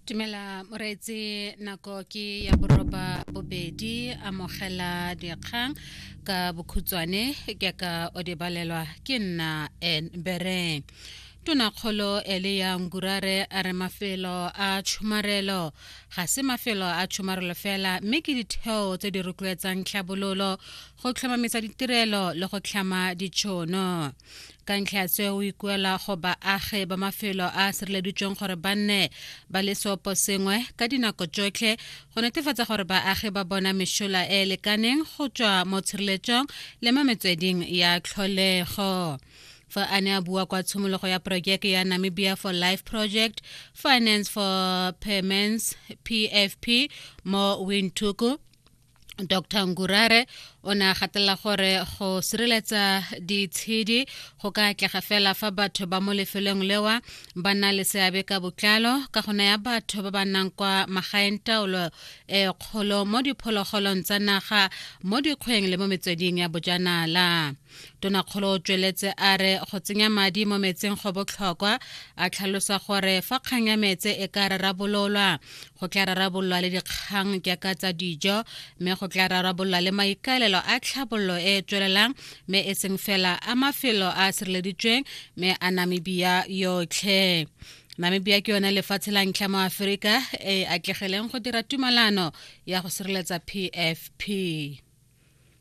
Tumela moreetse nako ke ya boroba bobedi amogela dikgang ka bokhutswane ke ka o di balelwa ke nna en bereng tonakgolo ele ya ngurare a re mafelo a tshomarelo ga se mafelo a tshomarelo fela mme ke ditheo tse di rotloetsang tlhabololo go tlhomamisa ditirelo le go tlhama ditšhono ka ntlha ya seo o ikuela go baagi ba mafelo a a sireleditsweng gore ba nne ba le seopo sengwe ka dinako tsotlhe go netefatsa gore baagi ba bona mešola e e lekaneng go tswa mo tshireletsong le mo metsweding ya tlholego fa a ne a bua kwa tshimologo ya porojeke ya namibia for life project finance for payments pfp mo windhoek dr ngurare o ne a gatelela gore go sireletsa ditshedi go ka atlega fela fa batho ba mo lefelong lewa ba na le seabe ka botlalo ka go naya batho ba ba nnang kwa magaeng taolo e kgolo mo diphologolong tsa naga mo dikgweng le mo metsweding ya bojanala tonakgolo o tsweletse a re go tsenya madi mo metseng go botlhokwa a tlhalosa gore fa kgang ya metse e ka rarabololwa go tla rarabololwa le dikgang jaaka tsa dijo mme go tla rarabololwa le maikaelelo a tlhabololo e e tswelelang mme e seng fela a mafelo a a sireleditsweng mme a namibia yotlhe namibia ke yone lefatshe la ntlha mo aforika e atlegeleng go dira tumalano ya go sireletsa pfp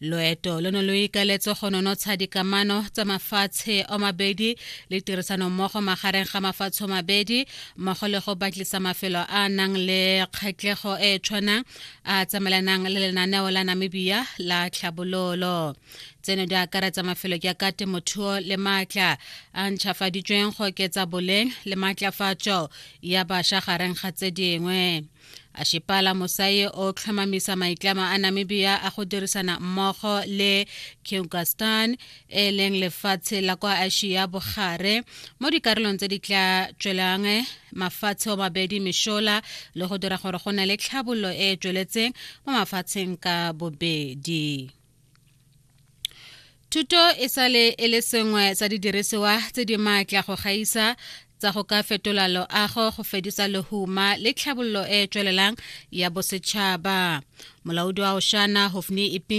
loeto lo ne lo ikaletse go nonotsha dikamano tsa mafatshe o mabedi le tirisanommogo magareng ga mafatshe o mabedi mmogo le go batlisa mafelo a nang le kgatlhego e e tshwanang a tsamaelanang le lenaneo la namibia la tlhabololo tseno di akaretsa mafelo ke ka temothuo le maatla a ntšhafaditsweng go oketsa boleng le maatlafatso ya bašwa gareng ga tse dingwe a shipala mosai o tlhomamisa maitlamo a namibia a go dirisana mmogo le kyrgyzstan e leng lefatshe la kwa asia bogare mo dikarolong tse di tla tswelang mafatshe o mabedi mešola le go dira gore go na le tlhabololo e e tsweletseng mo mafatsheng ka bobedi Thuto e sale e le sengwe sa didirisiwa tse di maatla go gaisa tsa go ka fetola loago go fedisa lehuma le tlhabololo e e tswelelang ya bosetšhaba molaodi wa oshana hofni iping